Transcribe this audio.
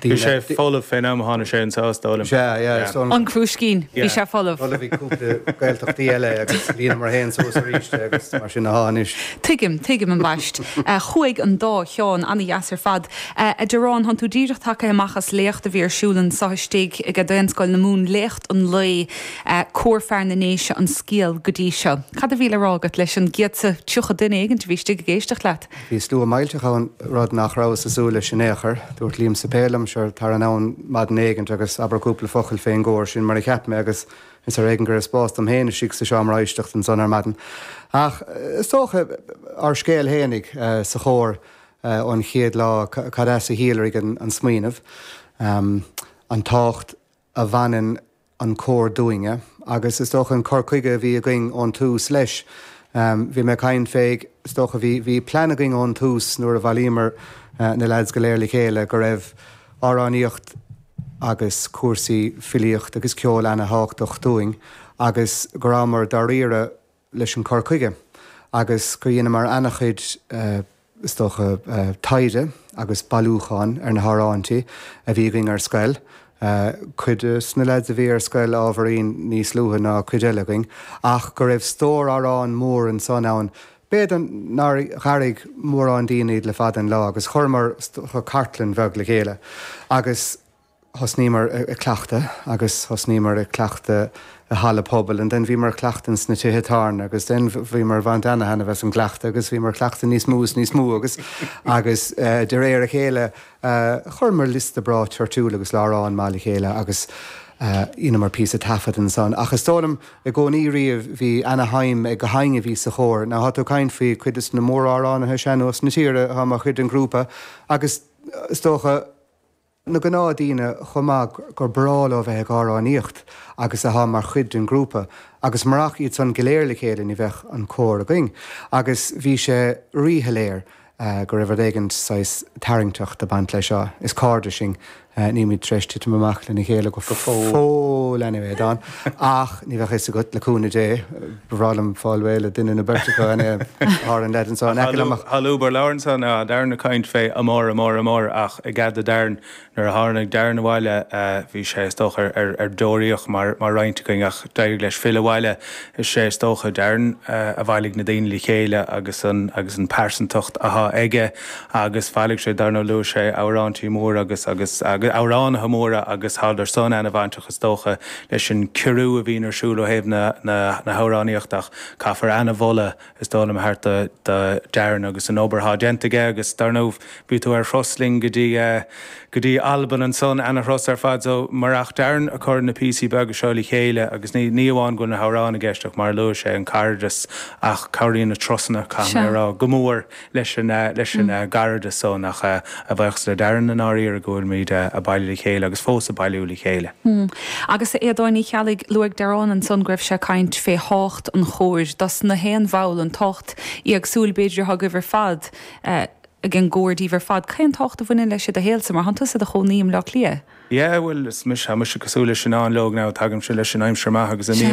Bhí sé folamh fén am a tháinig sé ins a' Stóilin. An Crúiscín, bhí sé folamh. Folamh bhí cúpla Gaeltachtaí eile agus líonamar fhéin suas aríst é agus mar sin athá anois. Tuigim, tuigim ambaist. Chuaigh an dá cheann ana-dheas ar fad. A Darren, thánn tú díreach tagaithe amach as léacht a bhí ar siúl anso istigh ag Daonscoil na Mumhan, léacht an lae, Cór Fear na nDéise, an scéal go dtí seo. Cad a bhí le rá agat leis an gcéad is tríocha duine éigint a bhí istigh ag éisteacht leat? Bhí slua millteach ann, rud nach rabhas ag súil leis in aon chor. Dúirt Liam Suipéil liom, Sure, tar anonn maidin éigint agus abair cúpla focal fén gcór. Sin mar a cheap mé agus is ar éigean go raibh spás dom féin istigh sa seomra éisteachta ansan ar maidin. Ach is dócha, ár scéal fhéinig sa chór ón chéad lá, cad as a shíolraigh an smaoineamh, an tábhacht a bhaineann an cór dúinne agus is dócha an cur chuige a bhí againn ón tús leis. Bhí mé ag caint fé, is dócha, bhí, bhí plean againn ón tús nuair a bhailíomar na leaids go léir le chéile go raibh amhránaíocht agus cúrsaí filíocht agus ceol ana thábhachtach dúinn agus go rabhamar dáiríre leis an cur chuige agus gur dheineamar an-chuid, is dócha, taighde agus bailiúcháin ar na hamhráintí a bhí againn ar scoil. Cuid de na leaids a bhí ar scoil ábhairín níos luaithe ná cuid eile againn ach go raibh stór amhrán mór ansan ann, b'fhéidir nár dh'airigh mórán daoine iad le fada an lá agus chuireamar cartlann bheag le chéile agus. thosnaíomar ag cleachtadh agus thosnaíomar ag cleachtadh i halla pobail and then bhíomar ag cleachtadh ins na tithe tábhairne agus then bhíomar ag baint ana-thaitneamh as an gcleachtadh agus bhíomar ag cleachtadh níos mó is níos mó agus agus de réir a chéile chuireamar liosta breá toirtiúil agus láithreán maith le chéile agus dheineamar píosa taifead ansan ach is dóigh liom i gcónaí riamh bhí ana-shuim ag gach éinne a bhí sa chór. Now tá tú ag caint faoi cuid de na mór-amhránaithe sean-nóis na tíre atá mar chuid den ghrúpa agus is dócha, na gnáthdhaoine chomh maith gur breá leo bheith ag amhránaíocht agus athá mar chuid den ghrúpa agus marach iad san go léir le chéile ní bheadh an cór againn agus bhí sé rí-shoiléir go raibh rud éigint saghas tarraingteach ag baint leis seo. Is cairde sinn, nílimid tar éis titim amach lena chéile go fóill anyway, a Don. Ach ní bheadh fhios agat, le cúnamh Dé. Ba bhreá liom fáil réidh le duine nó beirt acu, an Tár, an leaid anso in aice liom. Ach thall obair labhrann san ea Darren ag caint fé amár, amár, amár ach i gcead do Darren, nuair a tháinig Darren abhaile bhí sé is dócha ar ar deoraíocht mar mar roinnt againn ach d'éirigh leis filleadh abhaile is sé is dócha Darren a bhailigh na daoine le chéile agus an agus an pearsantacht athá aige agus bhailigh sé, dar ndóigh luaigh sé, amhráintí móra agus agus agus amhránaithe móra agus tá an-ard san ana bhainteach is dócha leis an gcór a bhíonn ar siúl ó thaobh na na na hamhránaíochta ach caithfear ana mholadh is dóigh liom a thabhairt do do Darren agus an obair thá déanta aige agus dar ndóigh bhí tú ar thuras linn go dtí go dtí Albain ansan ana thuras ar fad so marach Darren a chur na píosaí beaga seo le chéile agus ní ní amháin go bhfuil na hamhráin i gceist ach mar a luaigh sé an cairdeas ach cabhraíonn na turasanna caithfidh mé a rá go mór leis an leis an gcairdeas san ach an fáth sa deireadh i ndáiríre go bhfuilimid a' bailiú le chéile agus fós a' bailiú le chéile. Agus a Aodáin Uí Cheallaigh, luaigh Darren ansan go raibh sé a' caint fé thábhacht an chóir dos na haon bhall, an tábhacht éagsúil b'fhéidir atá agaibh ar fad eh, ag an gcór díbh ar fad. Cén tábhacht a bhaineann leis i do shaolsa? Mar thá'n tusa i do chónaí i mBleá Cliath. Yeah bhuel is mise, tá mise cosúil le Senan Logue now, tagaimse leis an aimsir mhaith agus a mbím,